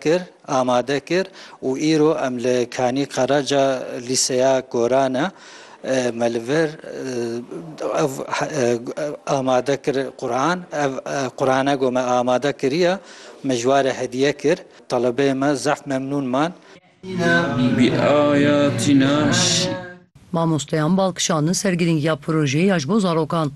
kir, amade kir û îro em li Kanî Karaca Lîseya Goran e me li vir ev amade kir Quran ev Qurane got me amade kiriye me ji ware hediye kir telebeyê me zehf memnûn man. Mamosteyan bal kişandin ser girîngiya projeyê ya ji bo zarokan.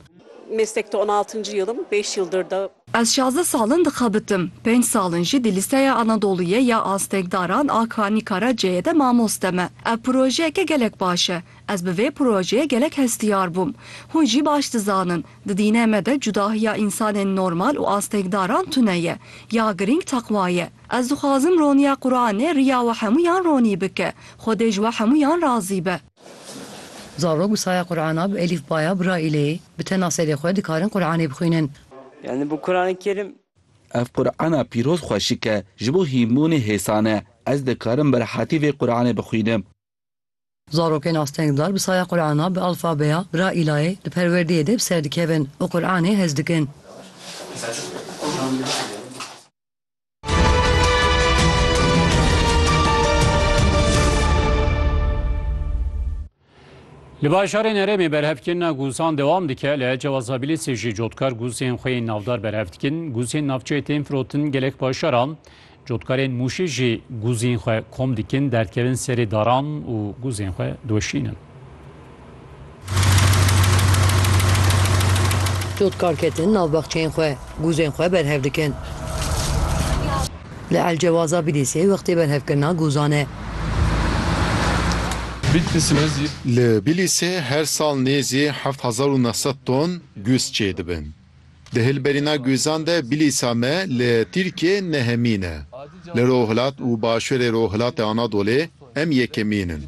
Meslekte on altıncı yılım, beş yıldır da. Ez şazdeh sal in dixebitim, penc sal in jî di Lîseya Anadoluyê ya Astengdaran a Kanî Karaceyê de mamoste me. Ev projeyeke gelek baş e. Ez bi vê projeyê gelek hestiyar bûm. Hûn jî baş dizanin, di dînê me de cudahiya însanên normal û astengdaran tune ye. Ya girîng teqwa ye. Ez dixwazim roniya Quranê riya we hemûyan ronî bike. Xwedê ji we hemûyan razî be. Zarok bi saya Qur'ana bi elîfbaya Braîleyê bi tena serê xwe dikarin Qur'anê bixwînin. Yani bu Kur'an-ı Kerim. Ev Qur'ana pîroz xweşik e, ji bo hînbûnê hêsan e. Ez dikarim bi rehatî vê Qur'anê bixwînim. Zarokên astengdar bi saya Qur'ana bi alfabeya Braîlayê di perwerdeyê de bi ser dikevin û Qur'anê hez dikin. Li bajarên herêmê berhevkirina gûzan dewam dike li Ecewa Zabilîsê jî cotkar gûzên xwe yên navdar berhev dikin. Gûzên navçeyê tên firotin gelek paşaran. Cotkarên Mûşê jî gûzên xwe kom dikin, derdkevin serê daran û gûzên xwe doşînin. Cotkar ketin nav baxçeyên xwe, guzên xwe berhev dikin. Li Elcewaza Bîlîsê wextê berhevkirina guzan e. Li Bîlîsê her sal nêzî heft hezar û neh sed ton guz çêdibin. Di hilberîna guzan de Bilîsa me li Tirkiyê nehemîn e. Li rojhilat û başûrê rojhilatê Anadolê em yekemîn in.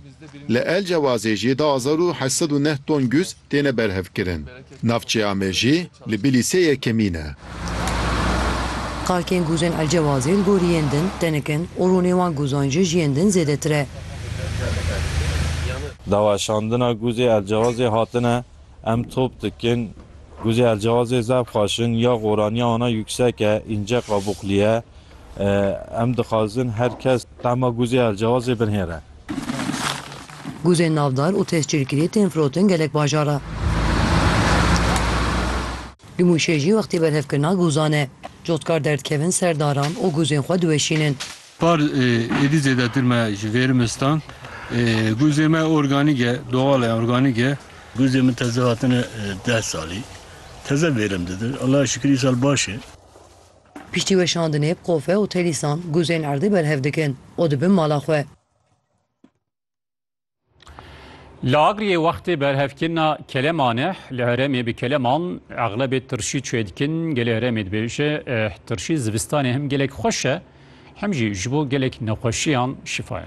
Li El Cewazê jî du hezar û heşt sed û neh ton guz têne berhevkirin. Navçeya me jî li Bilîsê yekemîn e. Xakên guzên El Cewazê li gorî yên din tenik in û rûnê wan guzan jî ji yên din zêdetir e. Daweşandina guzê El Cewazê hatine Em top dikin. Guzê elcewazê zaf xweş in ya goraniya wana yüksek e, înce qabuqlî ye. Em dixwazin her kes tahma guzê elcewazê binhêre. Guzên navdar û tescîlkirî tên firotin gelek bajar re. Li Mûşê jî wextê berhevkirina guzan e. Cotkar derdikevin ser daran û guzên xwe diweşînin. Par êdî zêdetir me ji vêrmistan guzê me organîk e, doxal e, organîk e. Guzê min teze hatine deh salî. Teze vêrim dide. Allahê şikir îsal baş e. Piştî weşandinê bi qofe û telîsan guzên erdê berhev dikin û dibin mala xwe. Li Agriyê wextê berhevkirina Kele Maneh li Herêmê bi kele man eglebê tirşî çê dikin. Gelê Herêmê dibêje eh, tirşî zivistanê hem gelek xweş e hem jî ji bo gelek nexweşiyan şifa ye.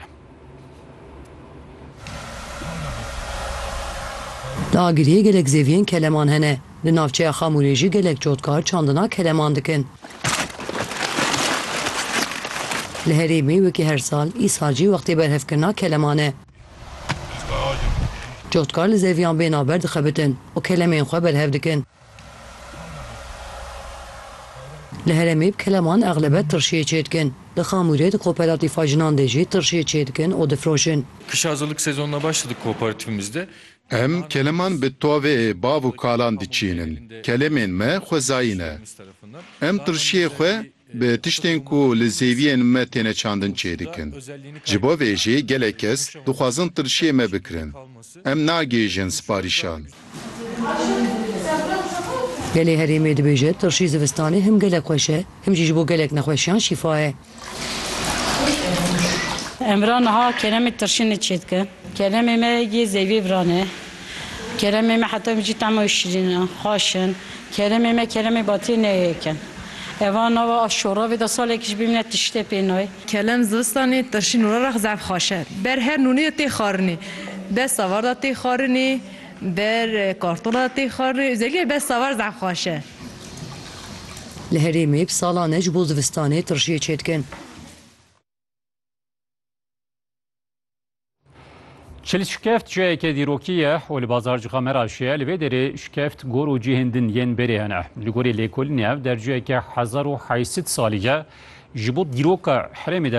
Li Agiriyê gelek zêviyên keleman hene. Di navçeya Xamûrê jî gelek cotkar çandina keleman dikin. Li herêmê wekî her sal, îsal jî wextê berhevkirina keleman e. Cotkar li zeviyan bên a ber dixebitin û kelemên xwe berhev dikin. Li herêmê bi keleman exlebet tirşiyê çêdikin. Li Xamûrê di kooperatîfa jinan de jî tirşiyê çêdikin û difroşin. Kışa hazırlık sezonuna başladık kooperatifimizde. Em keleman bi toveyê bav û kalan diçînin. Kelemên me xwezayî ne. Em qirşiyê xwe bi tiştên ku li zêwiyên me têne çandin çêdikin. Ji bo vê jî gelek kes dixwazin qirşiyê me bikirin. Em nagihîjin siparîşan. Gelê herêmê dibêje, Tirşî zivistanê him gelek xweş e, him jî ji bo gelek nexweşiyan şîfa ye. Emra niha keremê tirşinê çêdike. Keremê me yê zevî viran e. Keremê me heta vîncî tema wî şirîn e, xweş in. Keremê me keremê batiyê ne yek in. Eva nava a şoravê de salekî jî bimîne tiştê pê nayê. Kerem zivistanê tirşîn û rerex zehf xweş e. Ber her nûnê de tê xwarinê. Ber savar de tê xwarinê, ber kartola de tê xwarinê. Ozeliye ber savar zehf xweş e. Li herêmê bi salan e ji bo zivistanê tirşiyê çêdikin. Çil şikeft ciyayeke dîrokî ye û li bazarcîxa me re şiye. Li vê derê şikeft gor û cihên din yên berê hene. Li gorî lêkolînê ev derciyeke hezar û heysid salî ye. Ji bo dîroka herêmê